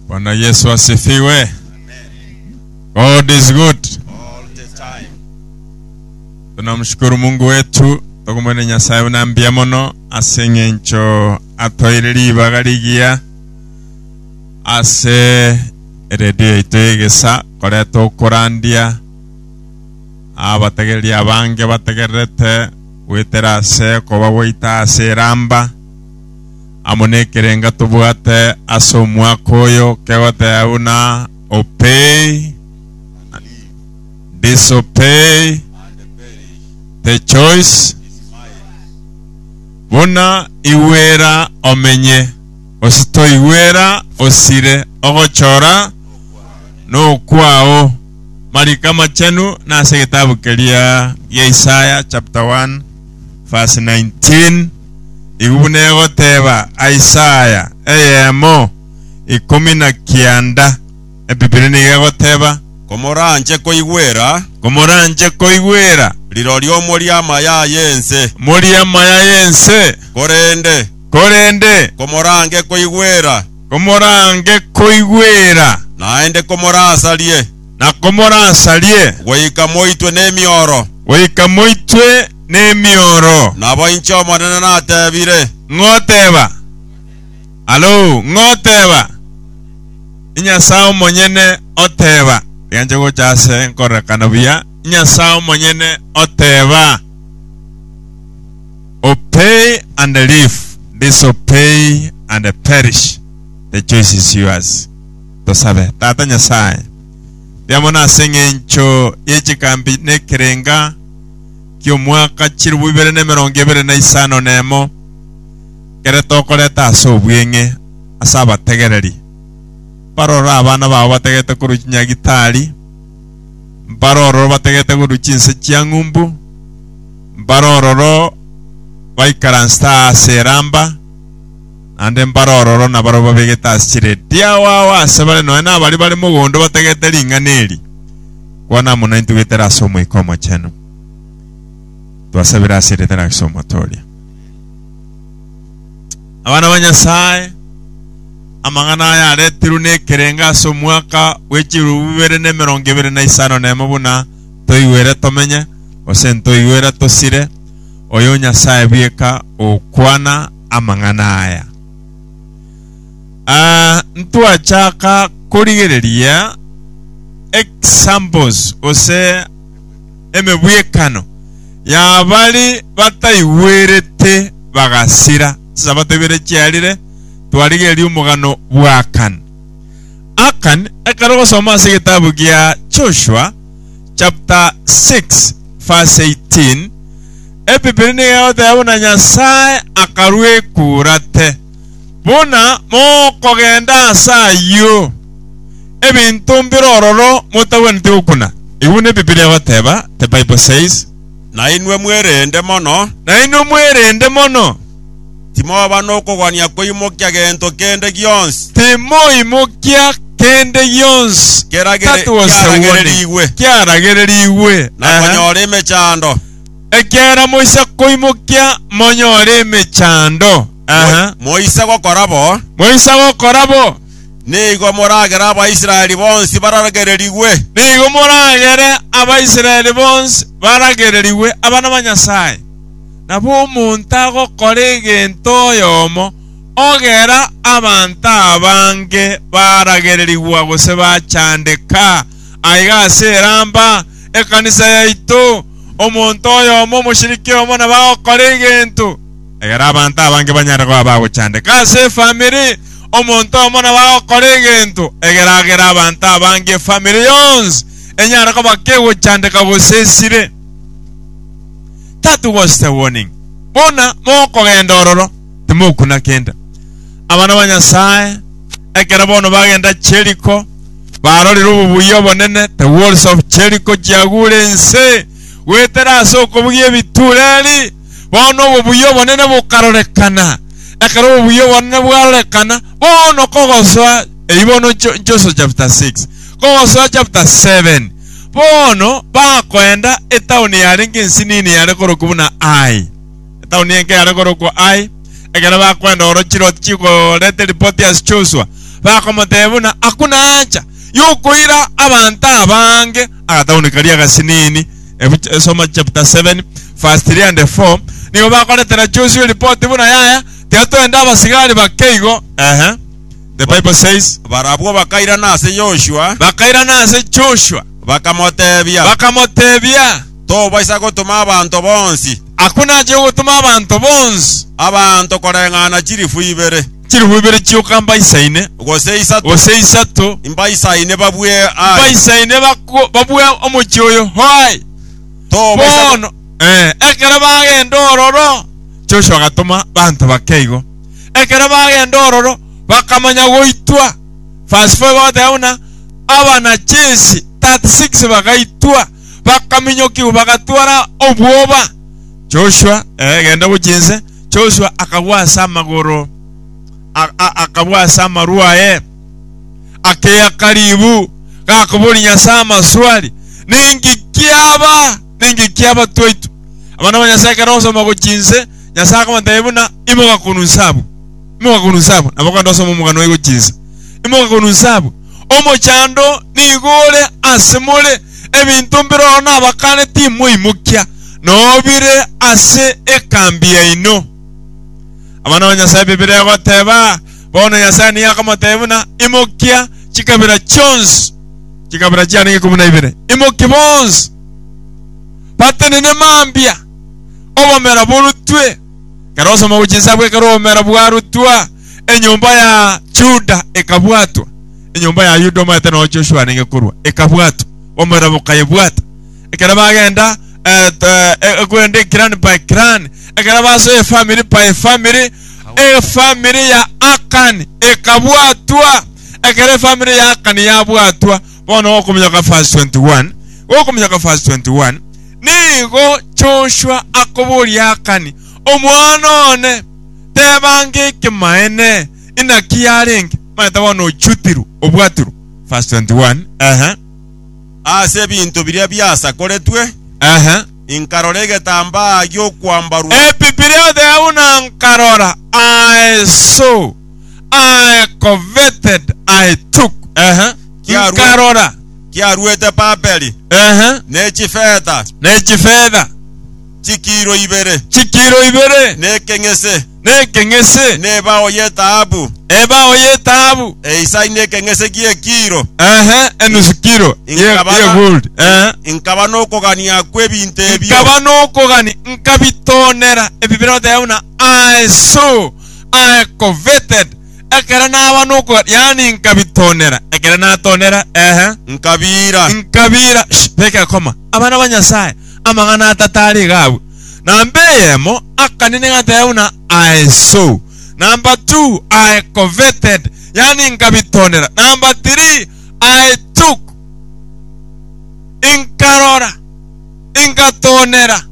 Bwana Yesu asifiwe. God is good. all the time. Tunamshukuru Mungu wetu tokumwene Nyasaye buna mbuya mono ase eng'encho atoire ribaga rigiya ase redio yaito y'egesa koreta okorandia abatagereri abange batagererete goetera ase okoba gwaito ase eramba amo nekerenga tobwate ase omwaka oyo kegoteba buna opei, disopei, the choice buna igwera omenye ositoigwera osire ogochora nokwao mariko amachenu nase egetabu keria gia Isaya chapter 1 verse 19. Igwe buna egoteba Isaya eyemo ikomi na kianda, Ebibilia nigo egoteba, Komoranche koigwera. Komoranche koigwera. Rirorio morie amaya aya ense. Morie amaya aya ense. Korende. Korende. Komorange koigwera. Komorange koigwera. Naende komorasarie. na komorasarie. Goika moitwe nemioro. Goika moitwe nemioro. Nabo inche Omonene natebire. Ng'oteba, Alou, ng'oteba, Inyasae omonyene oteba, rianche gocha ase nkorekana buya, Inyasae omonyene oteba, Obey and live, disobey and perish, the choice is yours. Tosabe. Tata Nyasae, ria mono ase engencho ye chikambi nekerenga ki'omwaka chilifu ibere nemerongo ebere na isano nemo, kere tokoreta ase obweng'e ase abategereri, mbarororo abana bao batagete korwa chinyagitari, mbarororo batagete korwa chinse chia ng'umbu, mbarororo baikaransete aase eramba, naende mbare ororo nabarabwo babegete ase chiredi ao ao asebare nonya nabaria bare mogondo bategete ring'ana eri, kwana amo naintwe goetera ase Omoika Omochenu. Twasabire ase erieta ria Kristo omotooria. Abana ba Nyasaye, amang'ana aya aretirwe nekerengo ase omwaka bwe chirubu bibere na emerongo ebere na isano na emo buna toigwere tomenye, gose ntoigwere tosire, oyo Nyasaye bweka ogokwana amang'ana aya. Aa, ntwachaka korigereria examples gose emebwekano yabari bataigwerete bagasira. Chisabato ibere chiarire twarigereria omogano bw'Akan. Akan ekero ogosoma ase egetabu gia Joshua, chapter 6 verse 18, Ebibiri nigegotea buna Nyasae akarua ekurate, buna mokogenda ase ayio ebinto mbire ororo motagwenereti gokuna. Ebi buna Ebibiri egoteba, The Bible says. Nainwe mwerende mono. Nainwe mwerende mono. Timoba nokogania koimokia gento kende gionsi. Timoimokia kende gionsi Kera gere- that was the kiaragererigwe. warning. Kiaragererigwe. na Aha. konyora emechando. Ekiagera moise koimokia monyore emechando. Aha. Mo- Moise gokora bo, Moise gokora bo. nigo moragere Abaisraeli bonsi baragererigwe. Nigo moragere Abaisraeli bonsi baragererigwe abana ba Nyasaye. Nabo omonto agokora egento oyomo ogera abanto abange baragererigwa gose bachandeka. Aiga ase eramba ekanisa yaito, omonto oyomo, omoshiriki oyomo nabo agokora egento egera abanto abange banyare koba bagochandeka. Ase efamiri, omonto oyomo nabo agokora egento egera agere abanto abange, efamiri yonsi, enyare koba kegochandeka gose esire. that was the warning buna mokogenda ororo timokuna kende abana ba nyasaye ekero bono bagenda cheriko barorire obobuya obonene the walls of cheriko chiagure ense goetera ase okobugia ebitureri bono obobuya obonene bokarorekana ekero obobuya obonene bwarorekana bono kogosoa eibono nchoso chapter 6 kogosoa chapter 7 Bono bakoenda etaoni yarenge ense nini yare korokwa buna Ai. Etaoni enke yare korokwa Ai. Ekero bakoenda orochie Loti chikoreta ripoti ase Josua, bakomotebia buna, Hakuna hacha y'okoira abanto abange agataoni karia agasinini. Ebu soma chapter 7 verse 3 and 4 Nigo bakoretera Josua eripoti buna yaya, Tiga toende abasigari bake igo, ehe. The Bible says, Barabwo bakairana ase Yoshua, Bakairana ase Joshua, bakamoteebia, bakamoteebia, Tobaisa gotoma abanto bonsi, Akwo nache ogotoma abanto bonsi, abanto koreng'ana chilifu ibere, chilifu ibere chioka mbaisaine, gose isato, gose isato, mbaisaine babue aye, mbaisaine bakwo- babue omochie oyo aye. Tobaisa go- Bono, eh, ekero bagenda ororo, Joshua agatoma banto bake igo. Ekero bagenda ororo bakamanya goitwa. Verse 4 bagoteba buna, Abanachesi 36 bagaitwa, bakaminyokigwa, bagatwara obwoba. Joshua, eh, genda gochia inse. Joshua akagwa ase amagoro, a- a- akagwa ase amaru aye, akeaka ribu, gakoboria Nyasae amaswali, Ninki kiaba? Ninki kiaba twaitwa? Abana ba Nyasae ekero ogosoma gochia inse, Nyasae akabateebia buna, Imoka korwa inse abwo, imoka korwa inse abwo. Nabo kande osome omogano oye gochia inse. Imoka korwa inse abwo. Omochando nigo ore ase more, ebinto mbire ororo nabakane timoimokia, nobire ase ekambi yaino. Abana ba Nyasae Bibilia egoteba, Bono Nyasae nigo akamoteebia buna, Imokia chikabira chionsi, chikabira chiarenge ikomi na ibere, imokia bonsi, batenene mambia, obomera borutwe. Ekero osoma gochia inse abwo, ekero obomera bwarutwa, enyomba ya Yuda ekabwatwa. Enyomba ya Yuda omanyete noo Joshua nige korwa, ekabwatwa, obomera bokayebwata. Ekero bagenda eh, eh, eh, kwenda eclan by clan, ekero basoa efamiri by efamiri, efamiri ya Akani ekabwatwa. Ekero efamiri ya Akani yabwatwa, Bono okominyoka verse 21, okominyoka verse 21, nigo Joshua akoboria Akani, omwana one, teba ng'ekimaene, inaki yarenge? Omanyete bono ochutirwe, obwatirwe. Verse 21, ehe, Ase ebinto biria biasakoretwe ehe. inkarora egetambaa gi'okwambarwa, Ebi biriotheo buna nkarora, aeso. I coveted, I took, ehe, Kiarue. nkarora, Kiaruete Babeli ehe, ne chifeta ne chifedha chikiro ibere, chikiro ibere, ne ekeng'ese, ne ekeng'ese, ne ebao y'etaabu, ebao y'etaabu, eisani ne ekeng'ese gi'ekiro. ehe, enusu kiro ye- Inkabana- ye gold, ehe. Inkaba n'okogania kw'ebinto ebio. nkaba nokogani nkabitonera ebibiroteba buna I saw aye coveted ekero naba nokoga, yaani nkabitonera ekero natonera, ehe. Nkabiira. Nkabiira, sh, teka ekoma, abana ba Nyasae, amang'ana atato are iga abwo. Namba eyemo, akanene gateba buna aye so. Namba two, aye coveted, yaani nkabitonera. Namba three, aye took, nkarora, nkatonera.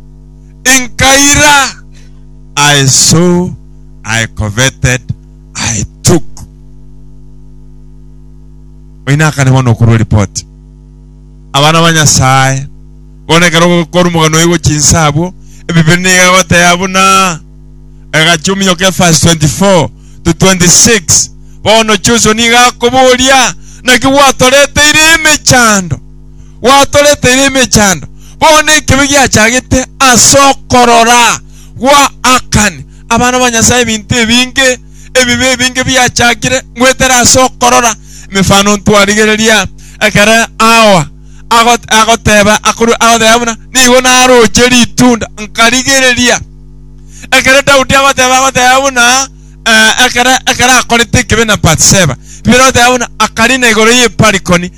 Inkaira, I saw, I coveted, I took. Oyio akane bono okorwa eripoti. Abana ba Nyasaye, bono ekero ogokora omogano oye gochinsa abwo, ebibere nigo egoteba buna egachia ominyoka evasi 24 to 26. Bono Joshua nigo akoboria, Naki gwatoreteire emechando? gwatoreteire emechando, bono ekibe giachagete as'okorora gwa Akani. Abana ba Nyasaye ebinto ebinge ebibe ebinge biachakire goetera as'okorora emefano ntwarigereria ekero Hawa agoteba buna, Nigo naroche ritunda nkarigereria. Ekero Daudi agoteba agoteba buna ekero akorete ekibe na Bathsheba, rirogoteeba buna akarina igoro y'eparikoni.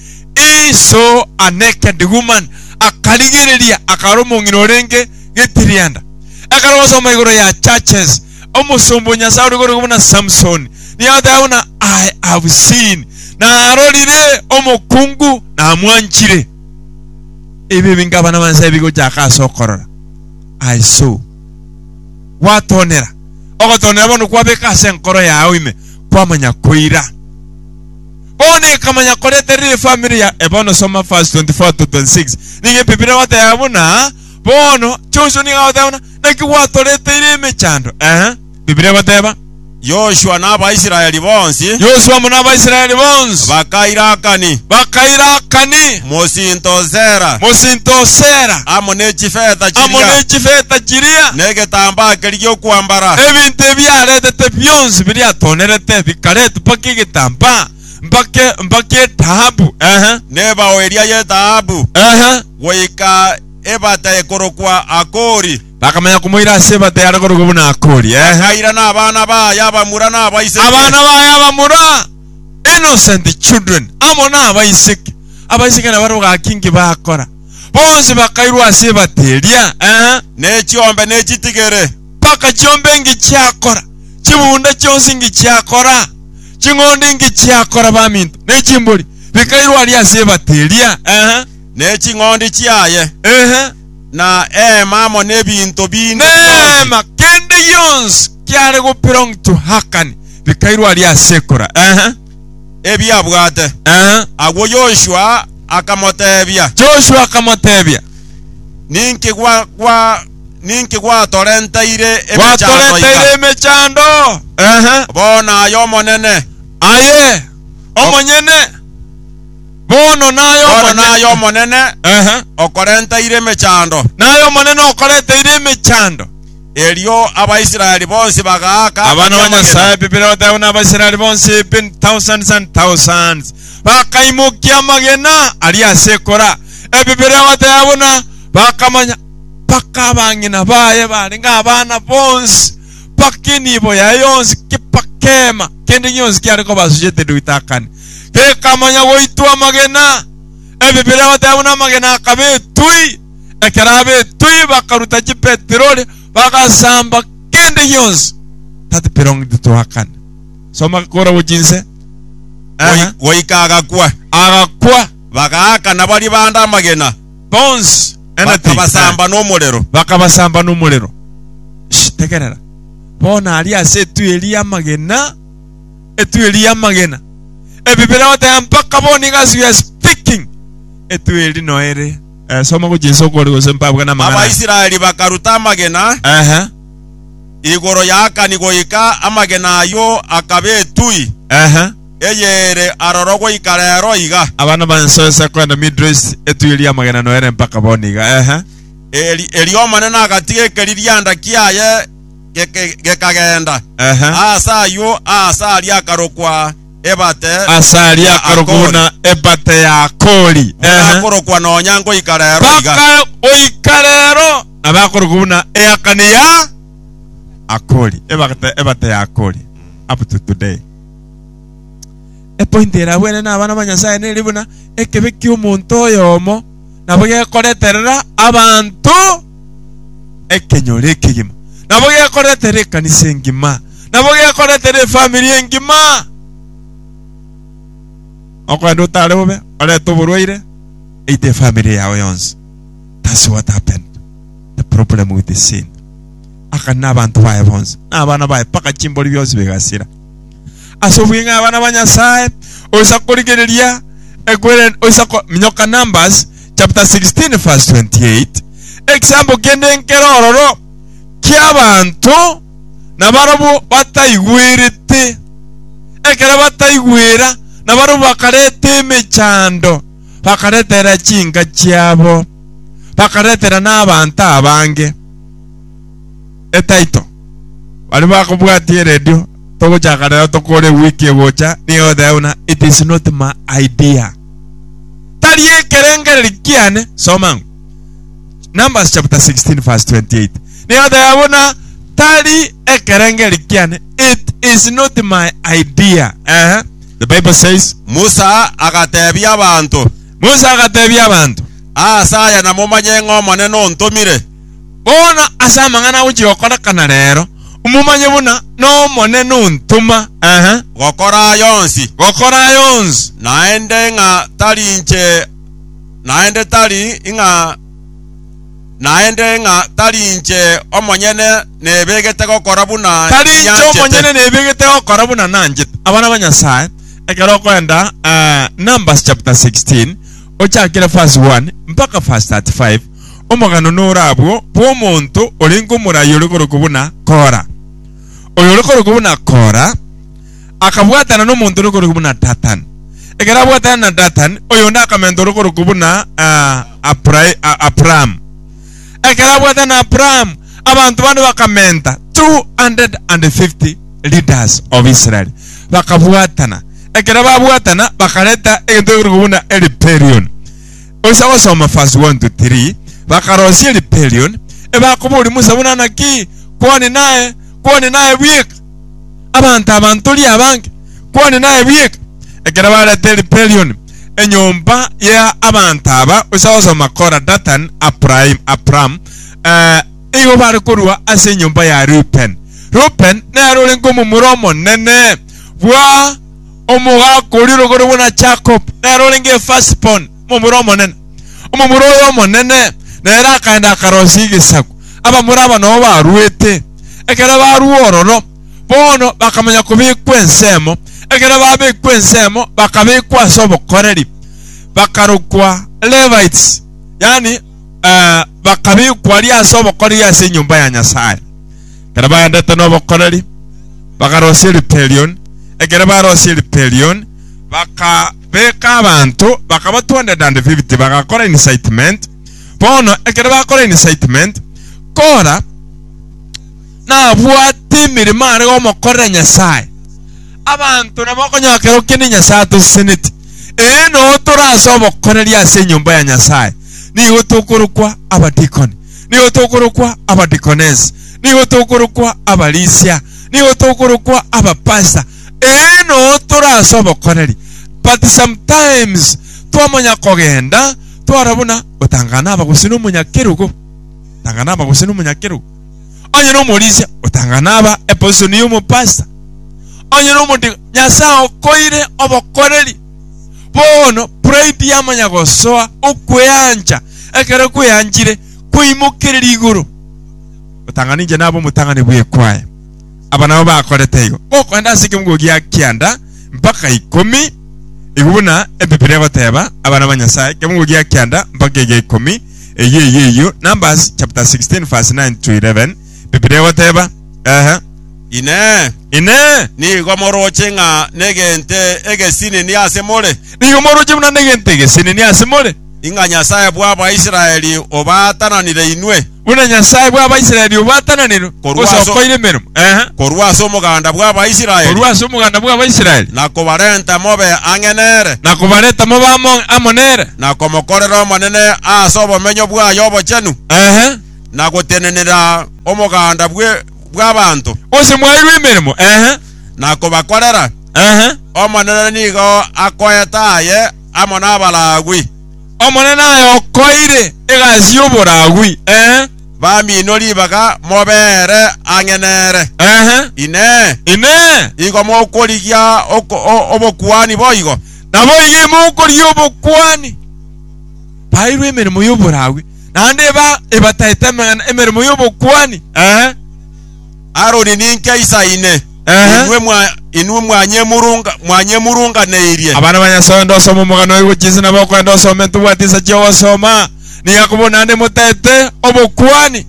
Iso anekende Guman akarigereria akara omong'ina orenge getirianda. Ekero basoma igoro ya Churches, omosomba o Nyasae oregorigwe buna Samson nigo agateba buna, I have seen, narorire omokungu namwanchire. Ebi ebinge abana ba Nyasae bigochaka ase okorora, I saw. Gwatonera, ogotonera bono kwabeka ase enkoro yao ime kwamanya koira. Bono ekamanya koria terire efamiri ya Ebono soma verse 24 to 26. Nigo ebibilia egoteba buna bono Joshua nigo agoteba buna naki gwatoreteire emechando. Eeh. Bibilia egoteba. Yoshua na Abaisraeli bonsi Yoshua amo n'Abaisraeli bonsi bakaira Akani, bakaira Akani mosinto o Sera, mosinto o Sera, amo ne chifeta amo chiria, ne chifeta chiria, na egetambaa keria gi'okwambara. ebinto ebiaretete bionsi biriatonerete bikaretwa mpaka egetambaa, mpaka e- mpaka etahabu. Ehe, Nebao eria y'etahabu, ehe. goika ebata ekorokwa Akori. Bakamanya komoira ase ebata yare korokwa buna Akori. Ehe. Akairana abana baye abamura na abaiseke. Abana baye abamura, innocent children, amo na abaiseke. Abaiseke nabarabwo gaki inki bakora? Bonsi bakairwa ase ebata eria. Ehe. ne chiombe ne chitigere. Mpaka chiombe ingichiakora, chibunda chionsi ingichiakora, ching'ondi ingichiakora baminto, ne chimbori bikairwe aria ase ebati eria. Ehe. ne ching'ondi chiaye, Ehe. na eema amo nebinto binde bionsi. Neema kende gionsi kiare go belong to Akani bikairwe aria ase ekura. Ehe. ebiabwate. Ehe. Agwo Yoshua akamoteebia, Joshua akamotebia, Ninki gwa- gwa- Ninki gwatorenteire emechando Gwatorenteire iga? emechando. Ehe. Bono aye Omonene. Aye omonyene. Bono naye Bono Omonene. naye Omonene Ehe. okorenteire emechando. Naye Omonene okorenteire emechando. Erio Abaisraeli bonsi bagaaka Abana ba Ebiamagena. Nyasae Biblia egoteba buna Abaisraeli bonsi bin thousands and thousands bakaimokia amagena aria ase ekora. Ebibilia egoteba buna bakamanya mpaka abang'ina baye barenge abana bonsi, mpaka enibo yaye yonsi, kepakema kende gionsi kiare kobasuchete Doitakani, kekamanya goitwa amagena. Ebibilia goteba buna amagena akaba etui, ekero aba etui bakaruta chipetirori bagasamba kende gionsi that belonged to Akani. Soma kora gochia inse. Aha. Goi- Goika agakwa. Agakwa. Bagaakana baria bande amagena. bonsi, anything, eh, bakabasamba nomorero. bakabasamba nomorero. Shh, tegerera. Bono aria ase etueri y'amagena, etueri y'amagena. Ebibere goteba mpaka bono iga as we are speaking, etueri no ere. Eh, soma gochia isoko ore gose mpabwe namagana. Abaisraeli bakaruta amagena Ehe, igoro ya Akani goika amagena ayio akaba etui. ehe. eyere aroro goika reero iga. Abana ba ensoyo ase koenda Middle East etuiri y'amagena noere mpaka bono iga, eeh. Eri, erio Omonene agatiga ekeririanda kiaye geke, gekagenda, Eeh. aase ayio, aase aria akarokwa Ebate Ase aria ya akarokwa Akori. buna Ebate ya Akori, Buna eeh. akorokwa nonya ngoika reero iga. Mpaka goika reero nabo akorokwa buna Eakani ya Akori, Ebate, Ebate ya Akori, up to today. Epointi ere abwene na abana ba Nyasae nere buna ekebe ki'omonto oyomo, nabo gekoreterera abanto ekenyoro ekegima, nabo gekoreterera ekanisa engima, nabo gekoreterera efamiri engima. Okogenda otare bobe, orete oborwaire, eite efamiri yao yonsi. That's what happened. The problem with the sin. akane nabanto baye bonsi, na abana baye, mpaka chimbori bionsi bigasira. Ase obweng'aini abana ba Nyasae oisa korigereria ekwere oisa ko minyoka Numbers chapter 16 verse 28 ekisaambo kende enkero ororo ki'abanto nabarabwo bataigwerete ekero bataigwera nabarabwo bakareta emechando bakaretera chinka chiabo bakaretera nabanto abange etaito baria bakobwatia eredio togochaka rero tokore ewiki egocha nigo oteba buna it is not my idea tari ekerengereri kiane soma ng'u Numbers chapter 16 verse 28 nigo oteba buna tari ekerengereri kiane it is not my idea ehe the bible says Musa agatebia abanto, Musa agatebia abanto. Aase aya namomanye ng'a Omonene ontomire. Bono ase amang'ana agochia gokorekana reero, momanye buna n'Omonene ontoma, ehe, gokora aya onsi, gokora aya onsi, naende ng'a tari inche, naende tari ng'a, naende ng'a tari inche omonyene nebegete gokora buna tari inche nyanchete. omonyene nebegete gokora buna nanchete. Abana ba Nyasae, ekero okoenda eh, Numbers chapter 16 ochakire verse 1 mpaka verse 35, omogano nore abwo bw'omonto orenge omoraai ore korokwa buna Kora. Oyo ore korokwa buna Kora akabwatana nomonto ore korokwa buna Datani. Ekero abwatana na Datani, oyonde akamenta ore korokwa buna Abrahamu. Ekero abwatana na Abrahamu, abanto bande bakamenta 250 leaders of Israel. Bakabwatana. Ekero babwatana bakareta egento egekorokwa buna Eliperioni. Gocha gosoma verse one to three, Bakarosia rebellion, ebakoboria Musa buna naki kwani naye, kwani naye bweka, abanto aba ntori abange, kwani naye bweka. Ekero barete rebellion enyomba ya abanto aba, gocha gosoma Korah, Datan, Abrahim, Abram, eh, igo bare korua ase enyomba ya Reuben. Reuben nere orenke omomura omonene bwa. Omogaka oria orogorigwe na Jakobo nere orenge Efasi-boni, omomura omonene. Omomura oye omonene nere akaenda akaroisia egesaku abamura aba nao baruete. Ekero barua ororo, bono bakamanya kobekwa ensemo. Ekero babekwa ensemo bakabekwa ase obokoreri, bakarokwa Levites, yaani bakabekwa aria ase obokoreri ase enyomba ya Nyasae. ekero baendete nobokoreri, bakarosia Ripelioni. Ekero barosie Ripelioni, bakabeka abanto, bakaba 250, bagakora incitement. Bono ekero bakora incitement, Kora nabwate emeremo are gomokorera Nyasae. Abanto nabo okonyora kera okende Nyasae atoseseneti. Ee, noo tore ase obokoreri ase enyomba ya Nyasae, nigo tokorokwa abadikoni. nigo tokorokwa abadeaconess, nigo tokorokwa abarisia, nigo tokorokwa abapastor. Ee noo tore ase obokoreri, but sometimes twamanya kogenda twara buna otang'ana na aba gose na omonyakerogo, otang'ana na aba gose na omonyakerogo, onye na omorisia otang'ana na aba eposition ya omopastor, onye na omode Nyasae akoire obokoreri. Bono pride yamanya gosoa okweancha, ekero kweanchire kwaimokereria igoro. Otanga ninche nabe omotang'ani bw'ekwaya. Aba nabo bakorete igo. Gokoenda ase ekemogo gia kianda mpaka ikomi, igo buna Ebibiri egoteba, abana ba Nyasae, ekemogo gia kianda mpaka egia ikomi, eyio eyio eyio, Numbers chapter 16 verse 9 to 11, Bibilia egoteba, Ehe. Inee! Inee! Nigo moroche ng'a negento egesinini ase more? Nigo moroche buna negento egesinini ase more? Ing'a Nyasae bw'Abaisraeli obaatananire inwe? Buna Nyasae bw'Abaisraeli obaatananire, Korwa ase- osokoire emeremo? Ehe. Korwa ase omoganda bw'Abaisraeli, Korwa ase omoganda bw'Abaisraeli, na kobarenta mobe ang'e nere, na kobareta mobe amo amo nere? na komokorera Omonene ase obomenyo bwaye obochenu. Ehe. na gotenenera omoganda bwe- bw'abanto, Onsi mwaeirwe emeremo, ehe, na kobakorera, ehe. Omonene nigo akoeta aye amo n'Abalawii, Omonene aye okoeire egasi y'Oboragui, ehe, bamino ribaga mobeere ang'e nere. ehe. Inee! Inee! Igo mokorigia oko- o- obokuani boigo? Naboigo imokorigia obokuani. Baeirwe emeremo y'Oboragui. naende eba ebataete amang'ana emeremo y'obokuani, ee, Aroni ninke isa ine, Ehe. inwe mwa inwe mwanyemurunga mwanyemurunganeirie. Abana ba Nyasae onde osoma omogano oyogo chinsa nabo okoenda osome ntobwati insa chi'ogosoma niga kobua naende motaete obokuani.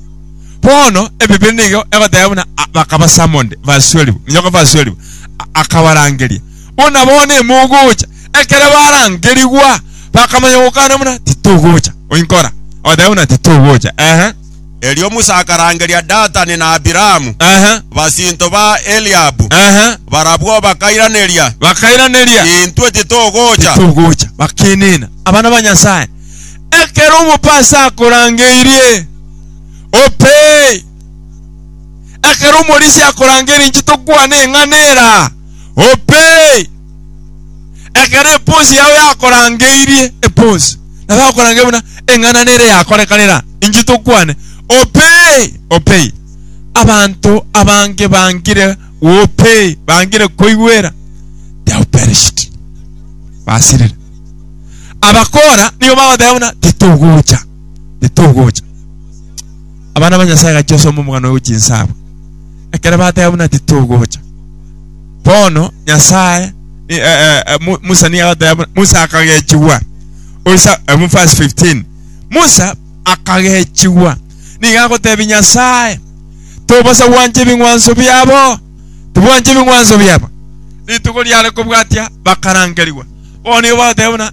Bono Ebibiri nigo egoteba buna a- bakaba summoned, basuerigwa, minyoka basuerigwa, a- akabarangeria. Buna bono imogocha, ekero barangerigwa, bakamanya gokana buna, Titogocha. Oinkora? Ogateba buna, Titogocha. Ehe. Erio Musa akarangeria Datani na Abiramu, Ehe. basinto ba Eliabu. Ehe. Barabwo bakairaneria, Bakairaneria. Intwe titogocha. Titogocha. Bakenena. Abana ba Nyasaye, ekero omopa ase akorangeirie, opee. Ekero omorisia akorangeirie, inche tokwane eng'ana eraa. Ope! Ekero eponsi yao yakorangeirie eponsi, nabo akorangeria buna eng'anane ere yakorekana era, inche tokwane, Ope! Ope! Abanto abange bangire Ope! Bangire koigwera, they have perished. Basirire. Abakora nigo bagoteba buna titogocha, titogocha. Abana ba Nyasae gachia osome omogano oyo chinsa abwo. Ekero bateba buna titogocha, bono Nyasae ni- eh, eh, eh, Mu- Musa nigo agateba buna Musa akagechigwa. Oisa eh, mu verse 15. Musa akagechigwa. Nigo agotebia Nyasae, tobosa gwancha ebing'wanso biabo, tibwancha ebing'wanso biabo. Rituko riare kobwatia bakarangerigwa. Bono nigo bagoteba buna